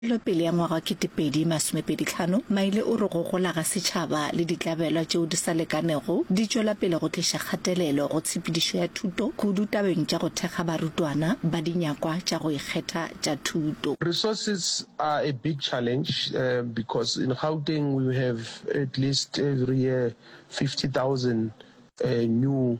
Tšwelopele ya ngwaga wa 2025, Maile o re go gola ga setšhaba le ditlabelwa tšeo di sa lekanego di tšwela pele go tliša kgatelelo go tshepedišo ya thuto, kudu tabeng tša go thekga barutwana ba dinyakwa tša go ikgetha tša thuto. Resources are a big challenge because in Gauteng we have at least every year 50,000 new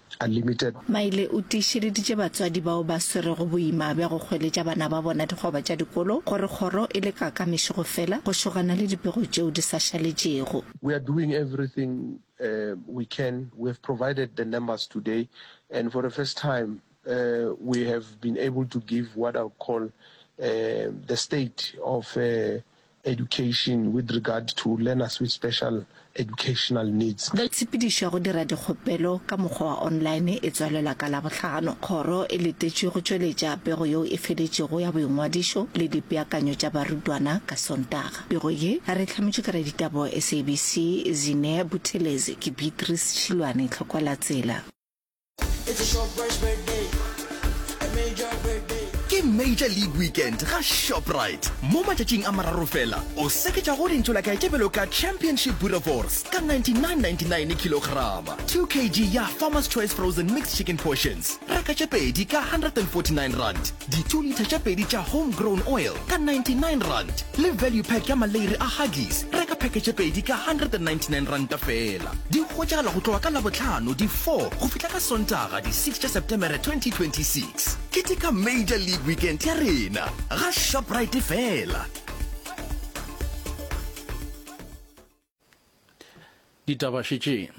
Unlimited. Maile o tiišeleditše batswadi bao ba swerego boima bja go hweletša bana ba bona dikgoba tša dikolo gore kgoro e leka ka mešego fela go šogana le dipego tšeo di sa šaletšego. We are doing everything we can, we have provided the numbers today and for the first time we have been able to give what I call the state of Education with regard to learners with special educational needs. Tshepedišo ya go dira dikgopelo ka mokgwa wa online e tswalela ka Labohlano. Kgoro e letetšwe go tšweletša pego yeo e feletšego ya boingwadišo le dipeakanyo tša barutwana ka Sontaga. Pego ye a re hlametšwe ke raditabo SABC Zine Buthelezi ke Beatrice Šilwane Tlhokwalatsela. Ke Major League Weekend ga Shoprite. Mo matšatšing a mararo fela, o seketša go dintšola kae tše bjalo ka Championship Boerewors ka 99.99 kilograma, 2 kg ya Farmer's Choice Frozen Mixed Chicken Portions, raka tše pedi ka R149, di 2 litha tše pedi tša Home Grown Oil ka R99, le Value Pack ya maleiri a Huggies, reka pheke tše pedi ka R199 fela. Di hwetšagala go tloga ka Labohlano di 4 go fihla ka Sontaga di 6 tša Setemere 2026. Keteka Major League Weekend ya rena ga Shoprite fela. Ditaba šetšeng.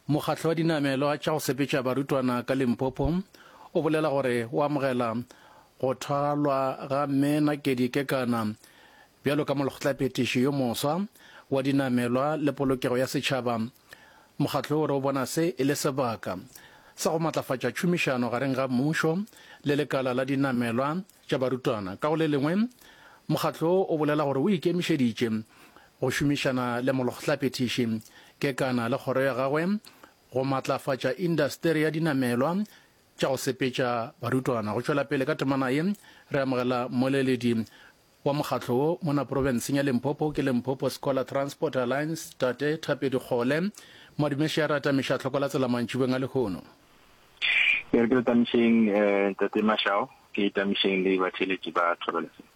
Mokgatlo wa dinamelwa tša go sepetša barutwana ka Limpopo o bolela gore o amogela go thwalwa ga Mme Nakedi Kekana Bjalo ka molhtlaphethiši yo moswa wa dinamelwa le polokego ya setšhaba, mokgatlo o re o bona se e le sebaka sa go matlafatša tšhomišano gareng ga mmušo le lekala la dinamelwa tša barutwana. Ka go le lengwe, mokgatlo wo o bolela gore o ikemišeditše go šomišana le molhtlaphethiši Kekana le kgoro ya gagwe go matlafatša indasteri ya dinamelwa tša go sepetša barutwana. Go tšwela pele ka temana ye, re amogela mmoleledi Wa mokgatlo wo mona profenseng ya Limpopo ke Limpopo Scholar Transport Alliance, Tate Thapedi Kgole. Madumeši a rata meša hloko la tsela mantšibeng a lehono. E re ke le tamišeng Ntate Mashau, ke tamišeng le batheeletši ba Thobeleseng.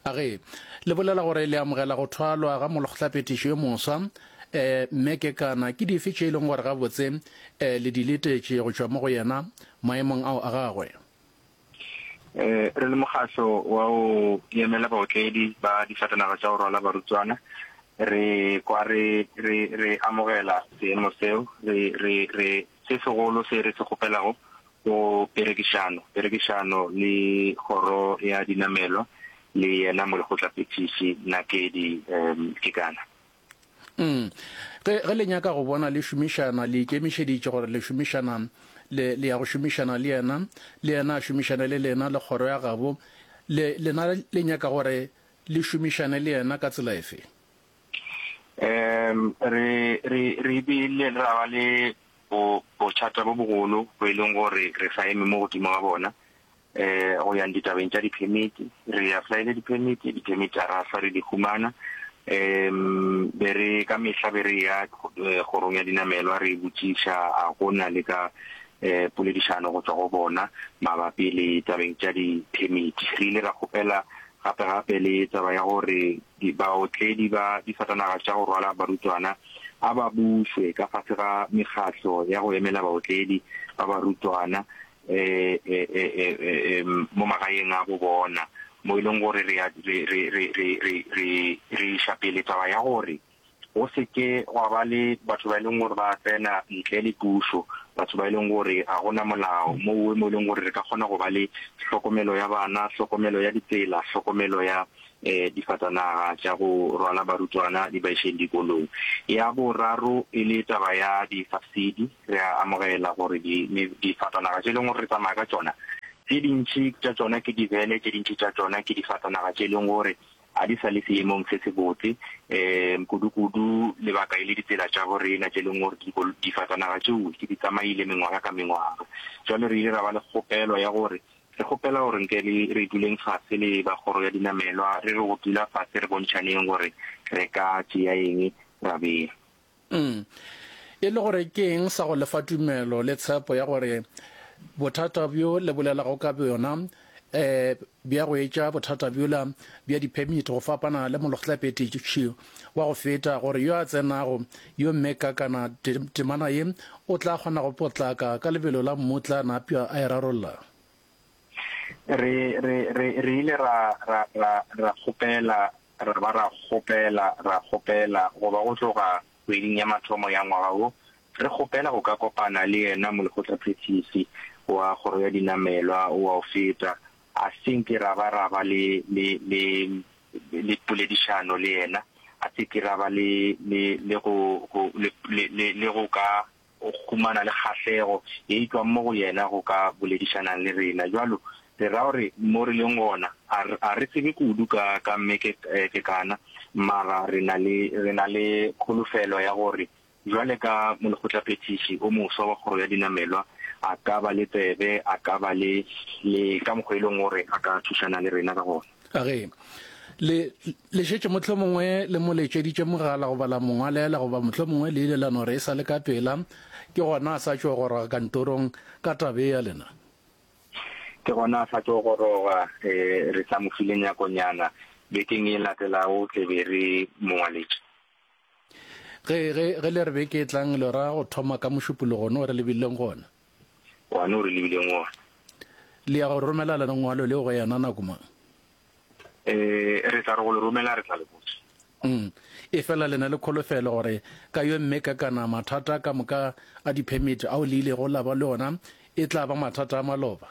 A re le bolela gore le amogela go thwalwa ga molghlapetiši yo moswa, mme ke kana ke dife tše e leng gore gabotse le di letetše go tšwa mo go yena maemong ao a gagwe? Re le mokgatlo wa go emela baotledi ba difatanaga tša go rwala barutwana, re kwa re re re amogela seemo seo. Re re re se segolo se re se kgopelago go perekišano perekišano le kgoro ya dinamelwa le yena molekgotlaphethiši Nakedi Kekana. Mm. Ge, ge le nyaka go bona le šomišana, le ikemišeditše gore le šomišana, le, le ya go šomišana le yena, le yena a šomišane le lena, le kgoro ya gabo, le, lena le nyaka gore le šomišane le yena ka tsela efe? Um, re, re, re bile ra ba le bo, bothata bo bogolo bo e leng gore re sa eme mo godimo ga bona. eh go yang ditabeng tša di-permit re applyile di-permit di-permit a ra sa re di humana um be re ka mehla be re ya eh, kgorong ya dinamelwa re botšiša a go na le ka eh poledišano go tswa go bona mabapi le tabeng tša di-permit re ile ra kgopela gape-gape le taba ya gore baotledi ba difatanaga tša go rwala barutwana a ba buswe ka fase ga mekgatlo ya go emela baotledi ba barutwana mo magaeng a bo bona mo e leng gore re iša pele taba ya gore go seke gwa ba le batho ba e leng gore ba tsena ntle le pušo batho ba e leng gore ga gona molao mo o mo e leng gore re ka kgona go ba le tlhokomelo ya bana tlhokomelo ya ditsela tlhokomelo ya difatanaga tša go rwala barutwana di ba išeng dikolong. Ya boraro e le taba ya difasidi, re a amogela gore difatanaga tše e leng gore re tsamaya ka tšona tše dintši tša tšona ke divele, tše dintši tša tšona ke difatanaga tše e leng gore ga di sa le seemong se se botse, um kudu-kudu lebaka e le ditsela tša bo rena tše e leng gore difatanaga tšeo ke di tsamaile mengwaga ka mengwaga. Jwale re ile ra ba le kgopelo ya gore Re kgopela gore nke le re duleng fase le ba kgoro ya dinamelwa, re re go dula fase re bontšhaneng gore re ka tšea eng ra bea. Umm. E le gore ke eng sa go lefa tumelo le tshepo ya gore bothata bjo le bolelago ka bjona eh bja go etša bothata bjola bja di-permit go fapana le molohlapetši wa go feta gore yo a tsenago yo mmeka kana temana ye o tla kgona go potlaka ka lebelo la mmutla napša a e rarolla re re re re ile ra ra ra ra kgopela ra ba ra kgopela ra kgopela go ba go tloga kgweding ya mathomo ya ngwaga wo re kgopela go ka kopana le yena molekgotla phethisi wa kgoro ya dinamelwa wa go feta A se nke ra ba ra ba le, le, le, le poledišano le yena, a se ke ra ba le, le, le go, go, le, le, le, le go ka humana le kgahlego ye e tšwang mo go yena go ka boledišanang le rena. Bjalo, re ra gore mo re leng gona, a, a re tsebe kudu ka, ka me ke, ke kana, mara re na le, re na le kholofelo ya gore Bjale ka Molekgotlaphethiši o mofsa wa Kgoro ya Dinamelwa, a ka ba le tsebe, a ka ba le, le ka mokgwa e leng gore a ka thušana le rena ka gona. A re, Le, le šetše mohlomongwe le mo letšeditše mogala goba la mo ngwalela, goba mohlomongwe le ile la no re e sa le ka pela, ke gona a sa tšo goroga kantorong ka taba e ya lena. Ke gona a sa tšo goroga, e, re sa mo file nyakonyana, bekeng e latelago tle be re mo ngwaletše. Ge, ge, ge le re beke e tlang, le ra go thoma ka mošupolo gone o re lebileng gona. Gone o re lebileng gona. Le ya go romela le lengwalo leo go yena nako mang? E, re tla re go le romela, re tla le botsa. Mm. E fela le na le kholofelo gore ka yo mme ka kana mathata ka moka a diphemiti ao le ilego la ba le ona e tla ba mathata a maloba?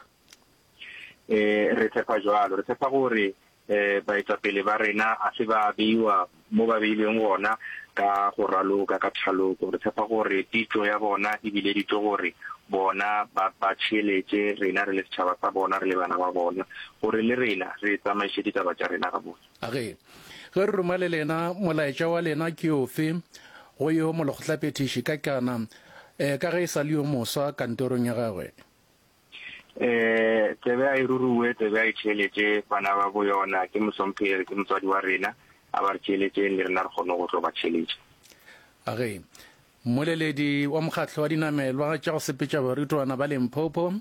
E, re tshepa jalo. Re tshepa gore e, baetapele ba rena a se ba beiwa mo ba beilweng gona ka go raloka, ka thaloko. Re tshepa gore pitšo ya bona e bileditšwe gore bona ba ba theeletše rena re le setšhaba sa bona, re le bana ba bona, gore le rena re tsamaiše ditaba tša rena gabotse. A Ge re ruma le lena, molaetša wa lena ke ofe go yo molekgotlaphethiši ka kana, e, ka ge e sa le yo moswa kantorong ya gagwe? Eh, tsebe a e rurue, tsebe a e theeletše, bana ba bo yona, ke mohlomphegi, ke motswadi wa rena, a ba re theeletšeng, le rena re kgone go tlo ba theeletša. A re, Mmoleledi wa Mokgatlo wa Dinamelwa tša go Sepetša Barutwana ba Limpopo,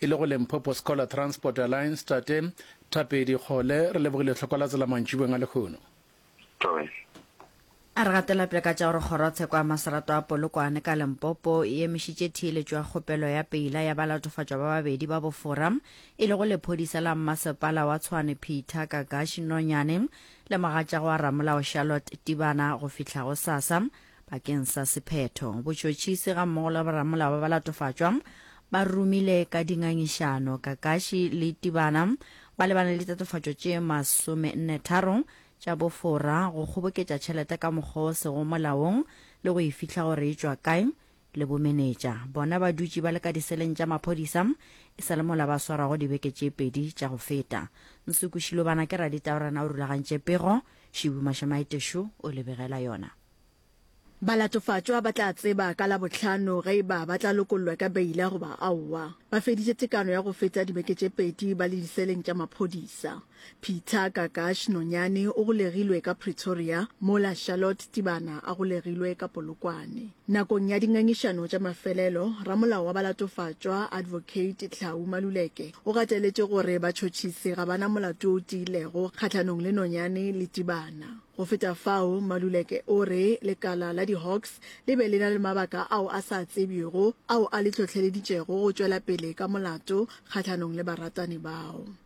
e lego Limpopo Scholar Transport Alliance, Tate Thapedi Kgole, re lebogile tlhoko la tsela mantšibeng a lehono. Joel. A re gatela pele ka tša gore Kgorotsheko ya Maserato a Polokwane ka Limpopo e emišitše theeletšo ya kgopelo ya peila ya balatofatšwa ba babedi ba bofora e lego lephodisa la mmasepala wa Tshwane Peter Kagashi Nonyane le mogatšagwe wa ramolao Charlotte Tibana go fihla go sasa Bakeng sa sephetho, botšotšisi gammogo le boramolao ba ba latofatšwa ba romile ka dingangišano Kakashi le Tibana ba lebane le ditatofatšo tše masome-nne-tharo tša bofora, go kgoboketša tšhelete ka mokgwa o sego molaong le go e fihla gore e tšwa kae, le bomenetša bona ba dutše ba le ka diseleng tša maphodisa e sa le mola ba swarago dibeke tše pedi tša go feta. Nsukushilobana ke raditaorana o rulagantše pego, Shibu Mashamaite Shu o le begela yona. Balatofatšwa ba tla tseba ka Labohlano ge e ba ba tla lokollwa ka beila goba aowa. Ba feditše tekano ya go feta dibeke tše pedi ba le diseleng tša maphodisa. Peter Gagash Nonyane o golegilwe ka Pretoria, mola Charlotte Tibana a golegilwe ka Polokwane. Nakong ya dingangišano tša mafelelo, ramolao wa balatofatšwa, Advocate Tlhau Maluleke, o gateletše gore batšhotšhisi ga ba na molato o tiilego kgahlanong le Nonyane le Tibana. Go feta fao, Maluleke o re lekala la di-Hawks le be le na le mabaka ao a sa tsebjego ao a le hlohleleditšego go tšwela pele ka molato kgahlanong le baratani bao.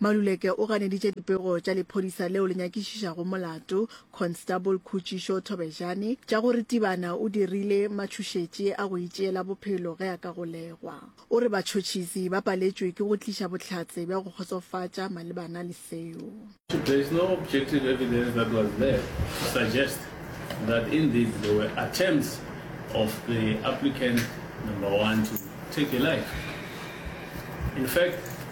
Maluleke o ganeditše dipego tša lephodisa leo le nyakišišago molato, Constable Khutšišo Thobejane, tša go re Tibana o dirile matšhošetše a go itšeela bophelo ge a ka golegwa. O re batšhotšhisi ba paletšwe ke go tliša bohlatse bja go kgotsofatša malebana le seo. There is no objective evidence that was there to suggest that indeed there were attempts of the applicant number one to take a life. In fact,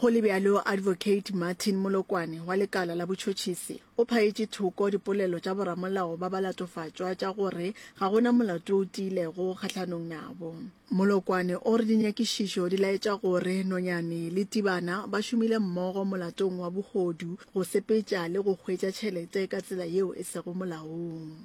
Go le bjalo, Advocate Martin Molokwane wa lekala la botšhotšhisi o phaetše thoko dipolelo tša boramolao ba balatofatšwa tša gore ga go na molato o tiilego kgahlanong nabo. Molokwane o re dinyakišišo di laetša gore Nonyane le Tibana ba šomile mmogo molatong wa bogodu go sepetša le go hwetša tšhelete ka tsela yeo e sego molaong.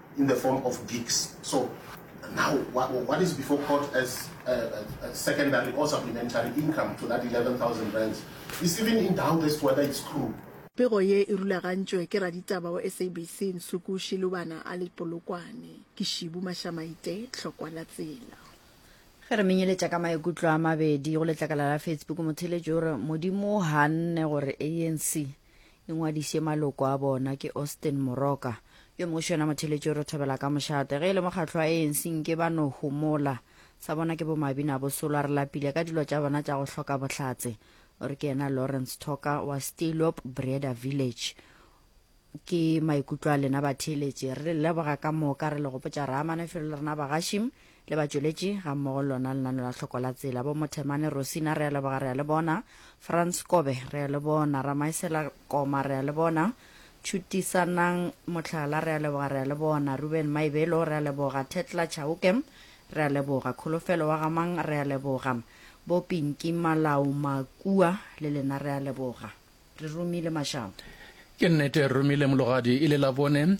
in the form of gigs so now what is before court as secondary or supplementary income to that 11,000 rands is even in doubt as to whether it's true. Pego ye e rulagantšwe ke raditaba wa SABC Nsuku Shilubana a le Polokwane. Ke Shibu Mashamaite, Hlokwa la Tsela. Ge re menyeletša ka maikutlo a mabedi go letlakala la Facebook, motheeletši o re Modimo o hanne gore ANC e ngwadiše maloko a bona ke Austin Moroka yo mongwe šona motheletši o re thobela ka mošate ge e le mokgatlho wa ANC nke ba no homola sa bona ke bomabina bosolwa re lapile ka dilo tša bona tša go hloka bohlatse o re ke yena Lawrence Toka wa Steelop Breda Village ke maikutlo a lena batheeletše re le leboga ka moka re le gopotša re amane felo le rena bagašim Le batšweletši ga mmogo lona lenano la hloko la tsela, bo Mothemane Rosina re a leboga re a le bona, Frans Kobe re a le bona, Ramaesela Koma re a le bona, Tšhutisanang Mohlala re a leboga re a le bona, Ruben Maibelo re a leboga, Thetla Chauke re a leboga, Kholofelo wa ga mang re a leboga, bo Pinki Malau Makua le lena re a leboga. Re romile Mashako. Ke nnete re romile mologadi e le la bone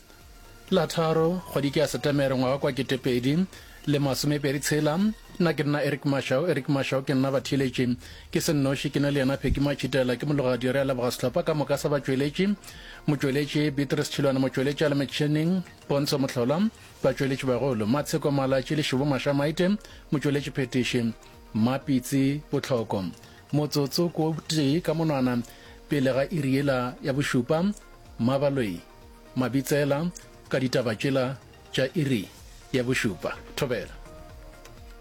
la tharo kgwedi ke ya setemere ngwaga kwa ketepedi le masomepedi tshela nna ke nna eric mashao eric mashao ke nna batheeletše ke se nnoši ke na le yena pheki matšhitela ke mologadi re a leboga sehlopha ka moka sa batšweletši motšweletši beatrice tšhilwana motšweletši a le metšhineng pontsho mohlolwa batšweletši bagolo matsheko malatši le šibo maša maite motšweletši phetiši mapitsi botlhoko Motsotso ko tee ka monwana pele ga iri yela ya bošupa, Mmabaloi Mabitsela ka ditaba tšela tša iri ya bošupa. Thobela.